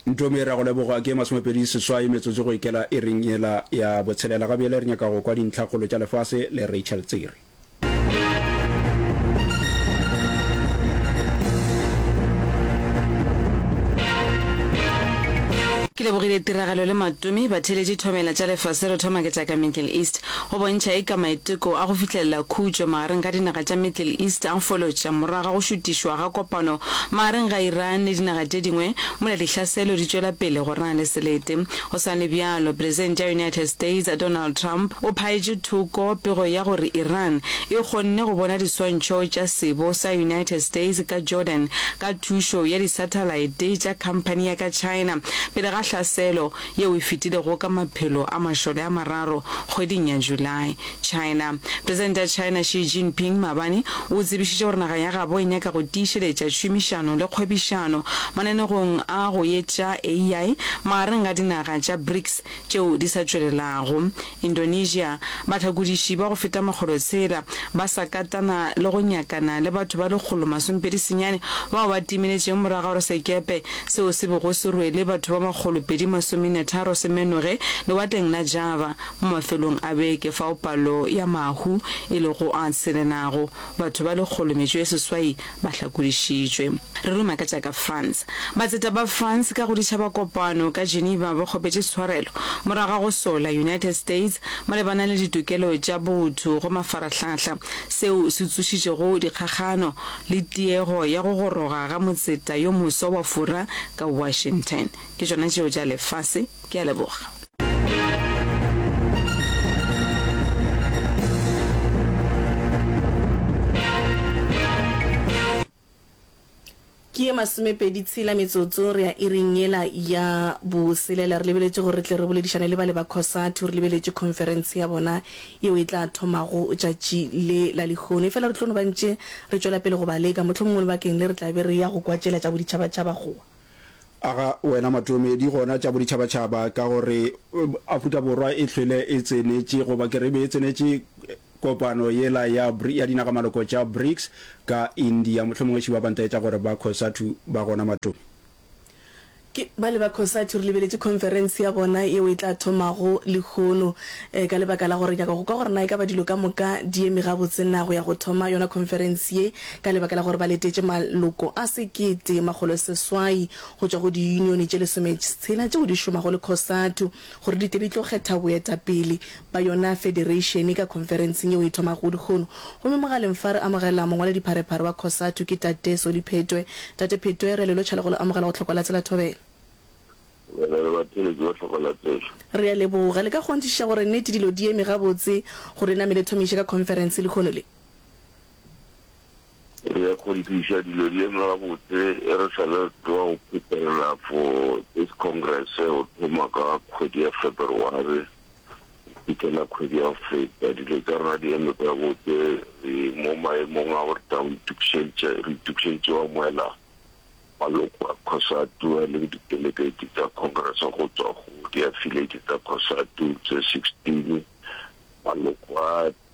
Ntomi re a go leboga. Ke masomepedi seswai metsotso go ikela iring yela ya botshelela. Gabjele re nyaka go kwa dintlhakgolo tša lefase le Rachel Tsiri. Ke lebogile tiragalo le Matomi. Batheeletši thomela tša lefase re thoma ke tša ka Middle East. go bontšha eka maiteko a go fihlelela khutšo magareng ga dinaga tša Middle East a folotša morago ga go šutišwa ga kopano magareng ga Iran le dinaga tše dingwe mola dihlaselo di tšwela pele go rena le selete. Go sa le bjalo, Presente ya United States, Donald Trump, o phaetše thoko pego ya gore Iran e kgonne go bona diswantšho tša sebo sa United States ka Jordan ka thušo ya disathalaete tša khamphani ya ka China pele ga hlaselo yeo e fetilego ka maphelo a mašole a mararo kgweding ya July. China. Presidente ya China Xi Jinping maabane o tsebišitše gore naga ya gabo e nyaka go tiišeletša tšhomišano le kgwebišano mananegong a go etša ai magareng ga dinaga tša BRICS tšeo di sa tšwelelago Indonesia, bahlakodiši ba go feta makgolo tshela ba sa katana le go nyakana le batho ba lekgolo masomepedi senyane bao ba timeletšeng morago ga gore sekepe seo se bego se rwele batho ba makgolo pedi masomenetharo se menoge lewatleng la Java mo mafelong a beke fao palo ya mahu e lego a tshelenago batho ba lekgolo metšo e seswai Ba hlakodišitšwe. Re ruma ka tša ka France. Batseta ba France ka go ditšhaba kopano ka Geneva ba kgopetše tshwarelo morago ga go sola United States malebana le ditokelo tša botho go mafarahlahla, seo se tsošitšego dikgakgano le tiego ya go goroga ga motseta yo moswa wa fura ka Washington. Ke tšona tšeo tša lefase. Ke a leboga. ke ye masomepedi tshela metsotso re ya iring yela ya boselela re lebeletše gore re tle re boledišane le bale ba cosatu re lebeletše conference ya bona yeo e tla thomago tšatši le la lehono e fela re tlo no bantše re tšwela pele go ba leka mohlomongwe lebakeng le re tla be re ya go kwatšela tša boditšhabatšhaba goa Aga wena matlomedi gona tša boditšhabatšhaba ka gore Afrika Borwa e hlwele e tsenetše goba ke re e be e tsenetše kopano yela ya ya dinagamaloko tša BRICS ka India. Mohlomongwe Šiba ba ntaetša gore ba Cosatu ba gona matlomedi. Ke bale ba Cosatu re lebeletše khonferense ya gona yeo e tla thomago lehono ka lebaka la gore nyaka go kwa gore na e ka ba dilo ka moka di eme gabotse na go ya go thoma yona khonferense ye Ka lebaka la gore ba letetše maloko a sekete makgolo seswai go tšwa go diyunione tše lesometshela tšeo di šomago le Cosatu gore di tle di tlo kgetha boetapele ba yona federeišene ka khonferenseng yeo e thomago lehono gomme mogaleng fa re amogela mongwaladipharephare wa Cosatu ke Tate Solly Phetwe. Tate Phetwe, re a le lotšha le go le amogela go Tlhokolatsela Thobela. Re na le batheeletši ba Tlhokolatsela. Re a leboga. Le ka kgonthišiša gore nnete dilo di eme gabotse gore e namele thomiše ka khonferense lehono le? Re kgonthiša dilo di eme gabotse e re sa le tloga go phuthelela for this congress go thoma ka kgwedi ya February go fitlhela kgwedi ya go feta dilo tsa rena di eme gabotse re mo maemong a gore tla itukišeditše re itukišeditše wa moela maloko a Cosatu a leng di-delegate tsa congress go tswa go di-affiliate tsa Cosatu tse 16 maloko a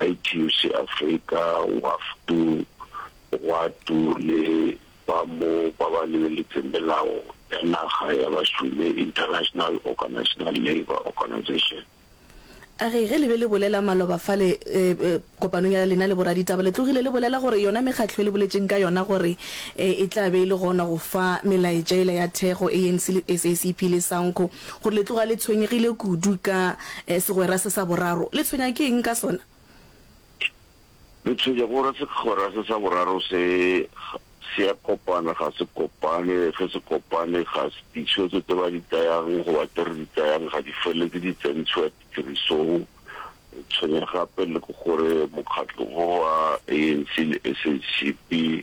ITUC Afrika, WAFTU, Gwatu le ba mo ba ba lebeletseng melao ya naga ya bašomi, International Organisational Labour Organization. A re ge le be le bolela maloba fale kopanong ya lena le boraditaba, le tlogile le bolela gore yona mekgatlo e le boletšeng ka yona gore e tla be e le gona go fa melaetša yela ya thekgo, ANC le SACP le SANCO, Gore le tloga le tshwenyegile kudu ka segwera se sa boraro, le tshwenya ke eng ka sona? Le tshwenya gore segwera se sa boraro se, se a kopana, ga se kopane, ge se kopane, ga se, ditshwetso tše ba di tsayang goba tše re di tsayang ga di feleletse di tsentšhwa tirisong. Le tshwenya gape le ke gore mokgatlo wo wa ANC le SACP,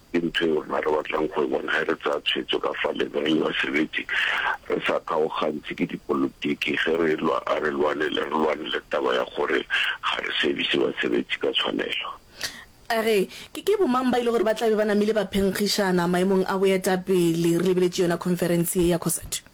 Ke ntho yeo rena re batlang go e bona ge re tsaya tshwetso ka fa legaeng la sebete, re sa kgaogantšhe ke dipolotiki. Ge re e-lwa, a re lwanele, re lwanele taba ya gore ga re sebise basebetsi ka tshwanelo. A re, Ke, ke bomang ba e le gore ba tla be ba namile ba phenkgišana maemong a boetapele? Re lebeletše yona khonferense ye ya Cosatu.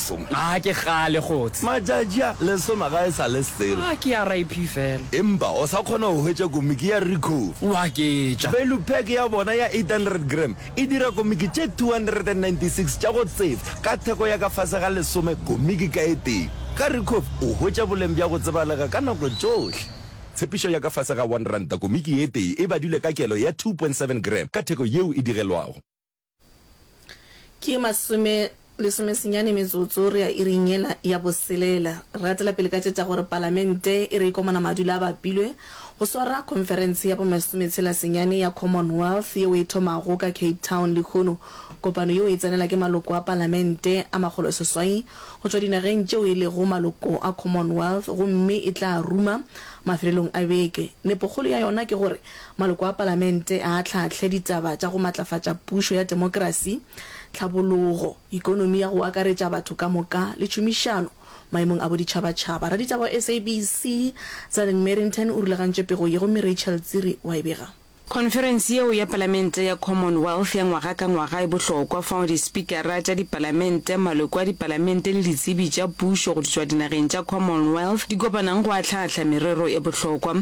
lesome. A ke kgale kgotse. Matšatši a lesome ga e sa le selo. A ke ya RIP fela. Empa o sa kgona go hwetša komiki ya Recover. O a ke tša. Value pack ya bona ya 800 gram e dira komiki tše 296 tša go tseba ka theko ya ka fase ga lesome komiki ka e tee. Ka Recover o hwetša boleng bja go tsebalega ka nako tšohle. Tshepišo ya ka fase ga one ranta komiki e tee e badilwe ka kelo ya 2.7 gram ka theko yeo e digelwago. Ke masome lesome senyane metsotso re ya iring yela ya boselela. Re atela pele ka tše tša gore Palamente e re ikomana madula a bapilwe go swara khonferense ya bomesometshela senyane ya Commonwealth yeo e thomago ka Cape Town lehono kopano yeo e tsenela ke maloko a Palamente a makgolo seswai go tšwa dinageng tšeo e lego maloko a Commonwealth gomme e tla ruma mafelelong a beke. Nepokgolo ya yona ke gore Maloko a Palamente a ahlaahle ditaba tša go matlafatša pušo ya temokrasi, tlhabologo, ekonomi ya go akaretša batho ka moka le tšhomišano maemong a boditšhabatšhaba. Raditaba wa SABC, Zallen Merrington o rulagantše pego ye gomme Rachel Tsiri wa e bega. Khonferense yeo ya Palamente ya Commonwealth ya ngwaga ka ngwaga e bohlokwa fao dispikara tša dipalamente, maloko a dipalamente le ditsebi tša pušo go tšwa dinageng tša Commonwealth di kopanago go ahlaahla merero e bohlokwa.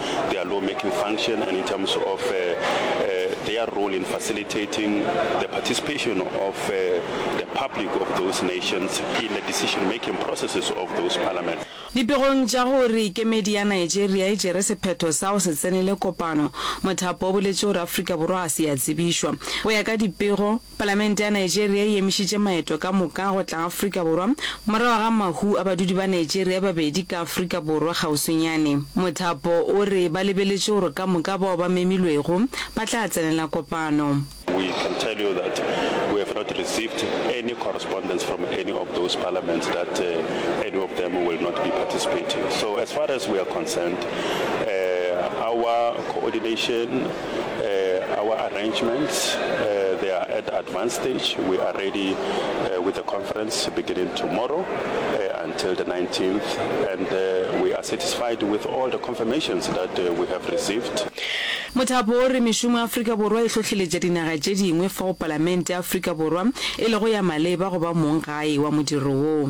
their law making function and in terms of uh, uh, their role in facilitating the participation of uh, the public of those nations in the decision making processes of those parliaments. Dipegong tša gore kemedi ya Nigeria e tšere sephetho sa go se tsenele kopano, mothapo o boletše gore Afrika Borwa ga se ya tsebišwa. Go ya ka dipego, Palamente ya Nigeria e emišitše maeto ka moka go tla Afrika Borwa morago ga mahu a badudi ba Nigeria babedi ka Afrika Borwa kgauswinyane. Mothapo o re ba lebeletše gore ka moka bao ba memilwego ba tla tsenela kopano. We can tell you that we have not received any correspondence from any of those parliaments that any of them will not be participating. So as far as we are concerned, our coordination, Uh, our arrangements, uh, they are at advanced stage. We are ready uh, with the conference beginning tomorrow uh, until the 19th, and uh, we are satisfied with all the confirmations that uh, we have received. Mothapo o re mešomo ya Afrika Borwa e hlohleletša dinaga tše dingwe fao Palamente ya Afrika Borwa e lego ya maleba go ba mong gae wa modiro wo.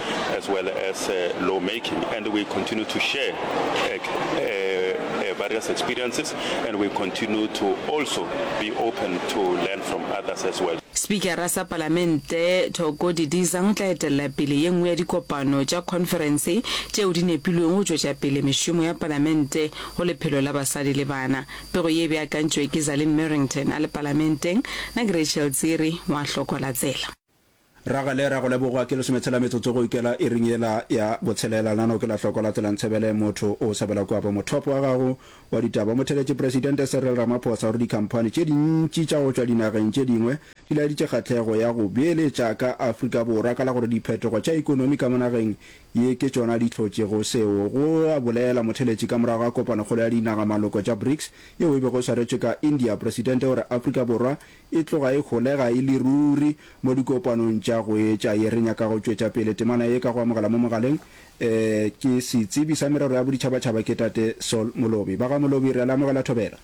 as well as uh, lawmaking, and we continue to share uh, uh, uh, various experiences, and we continue to also be open to learn from others as well. spikara sa palamente thoko didiza o tla etelela pele ye nngwe ya dikopano tša khonferense tšeo di nepilweng go tšwetša pele mešomo ya palamente go lephelo la basadi le bana pego ye e beakantšwe ke zalin merrington a le palamenteng na ke rachel tsere wa hlokola tsela Ragale, ra go leboga. Ke lesometshela metsotso go ikela iring yela ya botshelela. Nano ke la hloko latela Ntsebele, motho o sabela kua bo mothopo wa gago wa ditaba. Mo theletše Presidente Cyril Ramaphosa gore dikhamphani tše dintši tša go tšwa dinageng tše dingwe di laeditše kgahlego ya go beeletša ka Afrika Borwa ka la gore diphetogo tša ekonomi ka mo nageng ye ke tšona di hlotšego seo, go a bolela motheletši ka morago ga kopanokgolo ya dinaga-maloko tša BRICS yeo e bego e swaretšwe ka India. Presidente o re Afrika Borwa e tloga e holega e le ruri mo dikopanong tša go etša ye. Re nyaka go tšwetša pele temana ye ka go amogela mo mogaleng ke Setsebi sa Merero ya Boditšhabatšhaba ke Tate Saul Molobi. Ba ga Molobi, re a le amogela Thobela.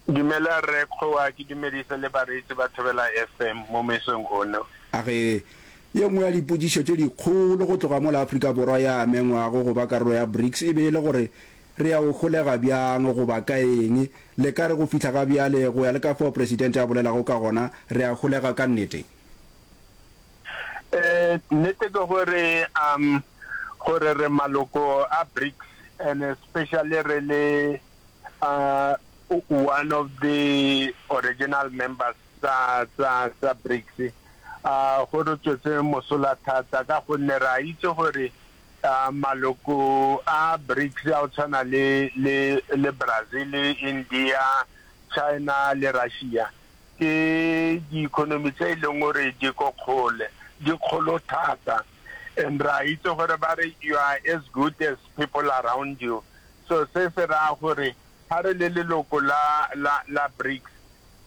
Dumela Rre Kgowa, ke dumedise le bareetsi ba Thobela FM mo mesong ono. A re, Ye nngwe ya dipotšišo tše dikgolo go tloga mola Afrika Borwa ya amengwago go ba karolo ya BRICS e be e le gore Re ya go holega bjang, goba ka eng? Le ka re, Go fihla ga bjale, go ya le ka fao Presidente a bolelago ka gona, re a holega ka nnete. Ee, nnete ke gore, um, gore re maloko a BRICS, and especially re le, uh, one of the original members tsa, tsa, tsa BRICS, uh, go re tswetse mosola thata, ka gonne re a itse gore Maloko a BRICS a go tshwana le, le, le Brazil, India, China le Russia ke diikonomi tse e leng gore di ko kgole, di kgolo thata. And re a itse gore ba re you are as good as people around you. So se se raya gore ga re le leloko la, la, la BRICS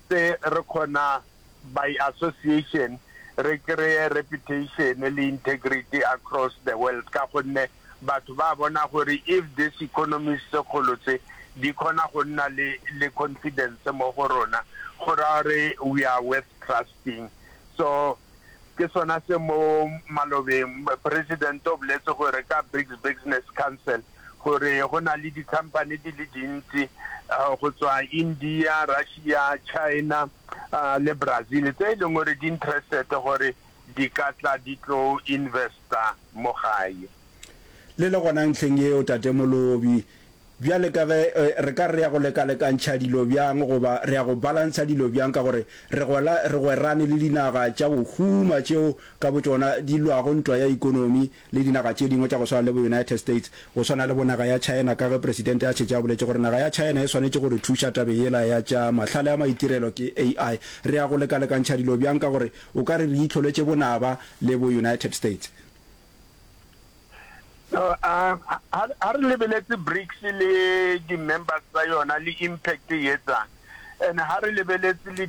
se re kgona by association re kreye reputation le integrity across the world ka gonne batho ba bona gore if this economies tse kgolo tse di kgona go nna le le confidence mo go rona go raya gore we are worth trusting so ke sona se mo malobeng President o boletse gore ka BRICS Business Council gore go na le dikhamphane di le dintsi go tswa India, Russia, China le Brazil tse e leng gore di interested gore di ka tla di tlo investa mo gae. Le le gona ntlheng yeo, Tate Molobi, bjale ka ge re ka re re ya go lekalekantšha dilo bjang goba re ya go balantsha dilo bjang ka gore re gwela re gwerane le dinaga tša go huma tšeo ka botšona di lwago ntwa ya ikonomi le dinaga tše dingwe tša go swana le bo United States, go swana le bo naga ya China ka ge Presidente a šetše a boletše gore naga ya China e swanetše go re thuša tabeng yela ya tša mahlale a maitirelo ke AI. Re ya go lekalekantšha dilo bjang ka gore o ka re re itlholetše bonaba le bo United States? Ha re lebeletse BRICS le di members tsa yona le impact e etsang and ha re lebeletse le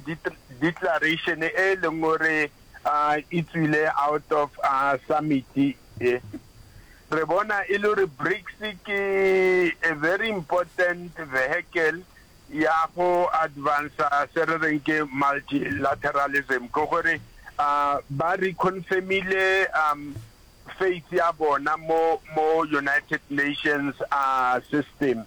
declaration e leng gore a e tswile out of a summit e. Re bona e le gore BRICS ke a very important vehicle ya go advance se re reng ke multilateralism ke gore a ba reconfirmile um faith ya bona mo mo United Nations a system.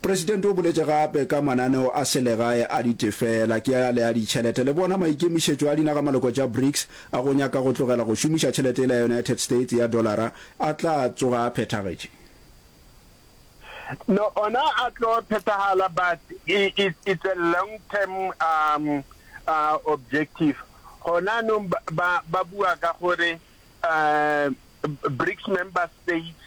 Presidente o boletše gape ka mananeo a selegae a ditefela, ke ale a ditšhelete. Le bona maikemišetšo a dinaga-maloko tša BRICS a go nyaka go tlogela go šomiša tšhelete yela ya United States ya dollara a tla tsoga a phethagetše. No, ona a tlo phethahala but it, it's a long term um, uh, objective. Gona anong ba, ba bua ka gore Um Brics member states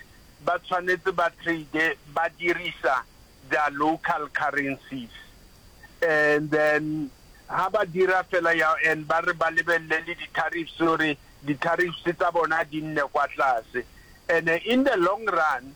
ba tshwanetse ba trade ba dirisa their local currencies and then ha ba dira fela ya and ba re ba lebelele le di tariffs gore di tariffs tsa bona di nne kwa tlase and in the long run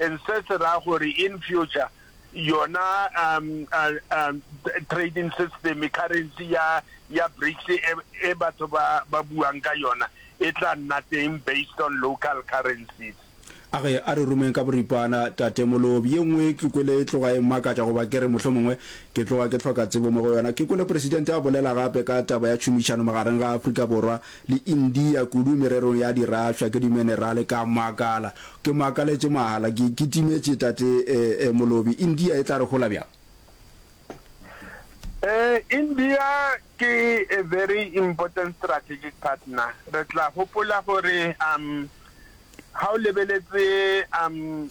and se se ra gore in future yona um, uh, um, trading system currency ya ya BRICS e, e batho ba ba buang ka yona e tla nna teng based on local currencies a ge a re rumeng ka boripana tate molobi ye nngwe ke kwele e tloga e mmakatša goba ke re mohlho mongwe ke tloga ke tlhoka tsebo mo go yona ke kwele presidente a bolela gape ka taba ya tšhomišano magareng ga afrika borwa le India kudu mererong ya dirafša ke dimenerale ka makala ke makaletše mahala ke ke timetše tate eh molobi India e tla re hola bjang? Eh India ke a very important strategic partner re tla hopola gore um ha o lebeletse um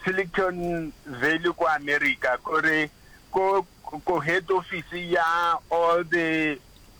Silicon Valley ko America kore ko ko head office ya all the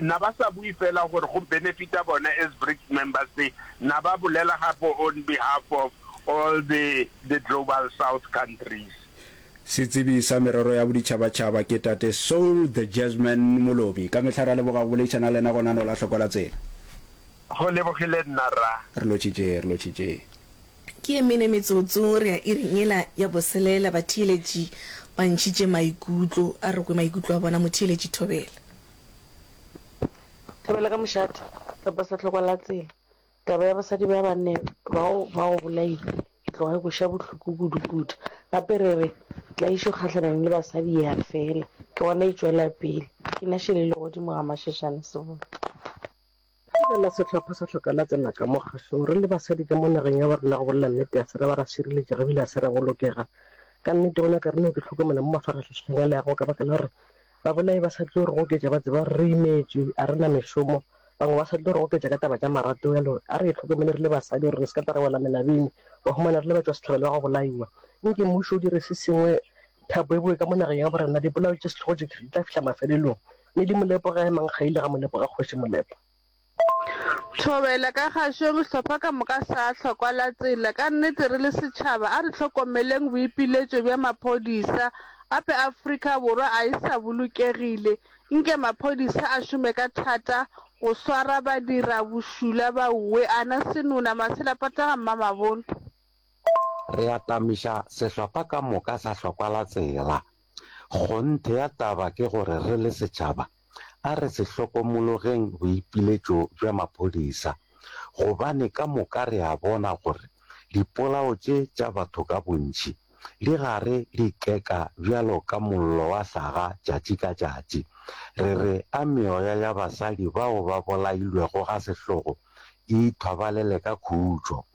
Na ba sa bui fela gore go benefita bona as BRICS members se na ba bolela gape on behalf of all the the Global South countries. Setsebi sa merero ya boditšhabatšhaba ke Tate Soul the Jazzman Molobi. Ka mehla re a leboga go boleišana le lena gona no la Hlokola Tsela. Go lebogile nna rra. Re lotšhitše, re lotšhitše. Ke e mene metsotso re ya iring yela ya boselela. Batheeletši ba ntšhitše maikutlo a re kwe maikutlo a bona. Motheeletši Thobela. Thibela ka mošate kapa sehloko la tsela, taba ya basadi ba banne bao ba go bolailwe e tloga e go ša bohloko kudukudu. Gape re re tlaišo kgahlanong le basadi e a fela, ke gona e tšwela pele. Ke na Shele Legodimo Gamašešane Seboko. Ge re la sehlopha sa hloka la tsena ka mo kgašong, re le basadi ka mo nageng ya borena go bolela nnete, a se ra ba ra šireletšega ebile a se ra bolokega. Ka nnete, go na ka re no ke hlokomela mo mafarahlašeng a leago ka baka la gore babolai ba sa tlo re goketša ba tseba gore re imetšwe, a re na mešomo, bangwe ba sa tlo re goketša ka taba tša marato. Bjalo a re itlhokomele re le basadi gore re se ka tla ra wela melabeng, wa humana re le batšwasehlabelo ba go bolaiwa. Nke mmušo o dire se sengwe thapo e bowe ka mo nageng ya borena, dipolao tše sehlogo tše di tla fihla mafelelong. Mme di Molepo ga e mang ga ile ga Molepo ga Kgoši Molepo. Thobela ka gašong hlopha ka moka sa hlokwa la tsela ka nnete re le setšhaba a re hlokomeleng boipiletšo bja maphodisa ape Afrika Borwa a e sa bolokegile nke maphodisa a šome ka thata go swara badira bošula ba wwe ana senona masela pataga mmamabolo. Re atamiša sehlopha ka moka sa hlokwa la tsela. Kgonthe ya taba ke gore re le setšhaba a re se hlokomologeng boipiletšo bja maphodisa gobane ka moka re a bona gore dipolao tše tša batho ka bontši di gare di ikeka bjalo ka mollo wa hlaga tšatši ka tšatši. Re re a meoya ya basadi bao ba bolailwego ga sehlogo e ithobalele ka khutšo.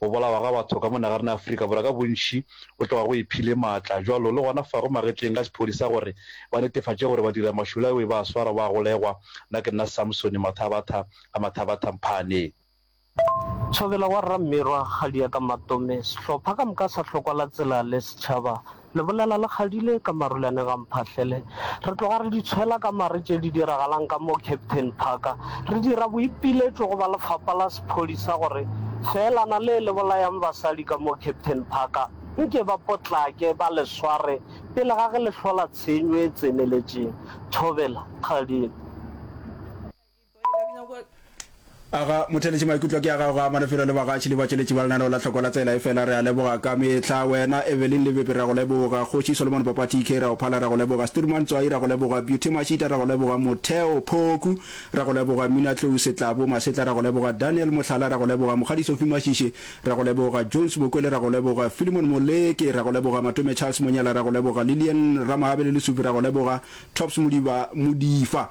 Go bolawa ga batho ka mo nagarena ya Afrika Borwa ka bontši go tloga go iphile maatla jwalo le gona fa go magetleng ka sephodisa gore ba netefatše gore badiramašula ewe ba a swarwa ba a golegwa. Nna ke nna Samsoni Mathabatha ga Mathabatha Mphane. Thobela wa Rra Mmirwa Kgadia Ka Matome, sehlopha ka moka sa hlokwala tsela le setšhaba Lebolela le kgadile ka marulane ga Mphahlele. Re tloga re di tshwela ka mare tše di diragalang ka mo Captain Park. Re dira boipiletšo go ba lefapa la sephodisa gore feelana le le bolayang basadi ka mo Captain Park nke ba potlake ba le sware pele ga ge le hlola tshenyo e tseneletšeng. Thobela, kgadile. a ga motheletše maikutlo ke a gago ga manefelo le bagatši le batšweletši ba lenaneo la tlhoko la tsela e fela re a leboga ka mehla wena evelyn lebepe ra go leboga kgoši solomon papa tk ra go phala ra go leboga sturman tswai ra go leboga beauty mashita ra go leboga motheo phoku ra go leboga mina tlou setlabo masetla ra go leboga daniel mohlala ra go leboga mogadi sofi mashiše ra go leboga jones bokwele ra go leboga filimon moleke ra go leboga matome charles monyela ra go leboga lilian ramahabele lesupi ra go leboga tops modiba modifa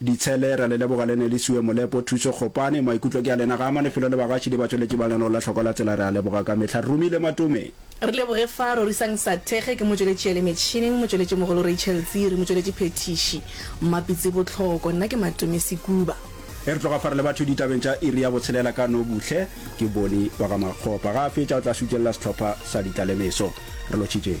Ditshele, ra le leboga le ne le sue molepo, thuso, kgopane. Maikutlo ke a lena Gama, lefelo le bagašidi ba tšweletši ba lenolo la hlokwa la tsela re a leboga ka mehla. Rumi le Matome. Re leboge fa Rorisang Sathege ke motšweletši ya le metšhineng, motšweletši mogolo Rachel Tsiri, motšweletši phethiši Mmapitsi Botlhoko, nna ke Matome Sekuba. Ge re tloga fa re le batho ditabeng tša iri ya botshelela ka Nobuhle ke Boni wa ga Makgopa. Ga a fetša o tla šutšelela sehlopha sa ditlalemeso. Re lotšhitšeng.